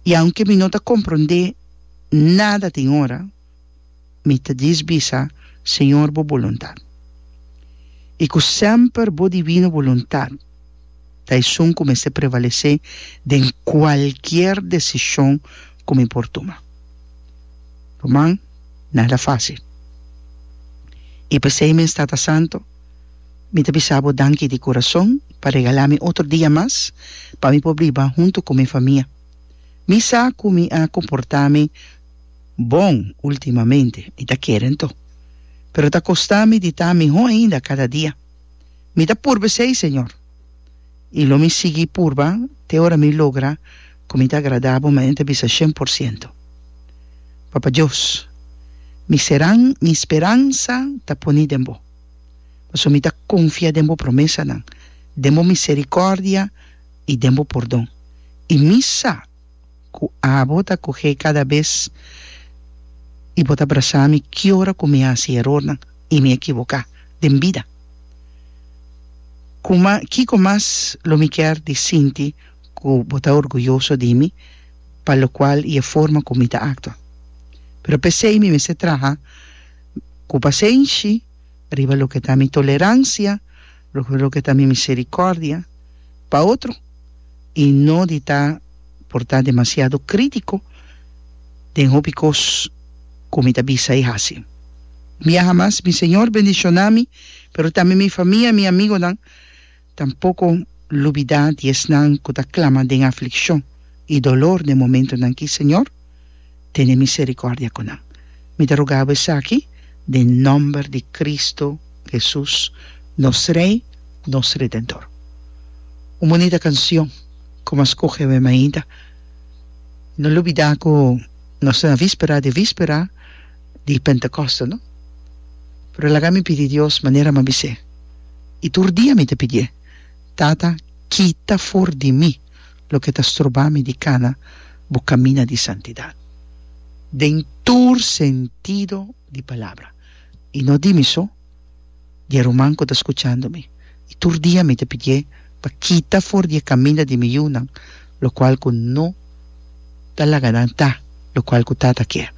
I aunke mi no ta komprondé nada tin ora, mi ta dis bisa, Señor, Bo boluntat. I ku semper Bo divino boluntat ta esun ku mester prevalesé den kualkier desishon ku mi por tuma. Ruman, nada fásil. I p'esei mi e sta ta santo. Mi ta bisa bo danki di kurason pa regalá mi otro dia mas pa mi por biba huntu ku mi famia. Mi sa ku mi a komportá mi bon últimamente, mi ta kere anto. Pero ta kostá mi di ta mihó ainda kada dia. Mi ta purba esei, Señor, i lo mi sigui purba te ora mi logra ku mi ta agradá bo manera bisa shen por siento. Papa Dios, mi seran, mi speransa ta poni den bo. Pasobra mi ta konfia den bo promesanan, den bo miserikòrdia i den bo pordon, i mi sa ku abo ta kuhé kada bes i bo ta brasá mi ki ora ku mi a hasi erornan i mi a ekiboká den bida. Kuma kiko mas lo mi kèr di sinti ku bo ta orguyoso di mi pa lokual i e forma ku mi ta aktua? Pero p'esei mi mester traha. Ku pasenshi, riba loke ta mi toleransia, riba loke ta mi miserikòrdia pa otro, i no di ta portá demasiado krítiko den hopi kos ku mi ta bisa i hasi. Biaha mas, mi Señor bendishoná mi, pero tambe mi famia i mi amigonan. Tampoko lubidá di esnan ku ta klama den aflikshon i dolor den momentunan akí, Señor, tene miserikòrdia ku nan. Mi ta rugá Bo esaki den nòmber di Kristu Hesus, nos Rei, nos Redentor. Un bunita kansion ku Bo a skohe awor mainta. No lubidá ku nos ta na víspera di víspera. di Pentecoste no pero laga mi pidi Dios manera m'a bis'é i tur dia mi ta pidié Tata kita for di mi loke ta stroba mi di kana bo camina di santidad den tur sentido di palabra i no di mi so di e ruman cu ta scuchando mi i tur dia mi ta pidié pa kita for di e caminda di mi yunan locual cu no ta laga nan ta locual cu Tata kier.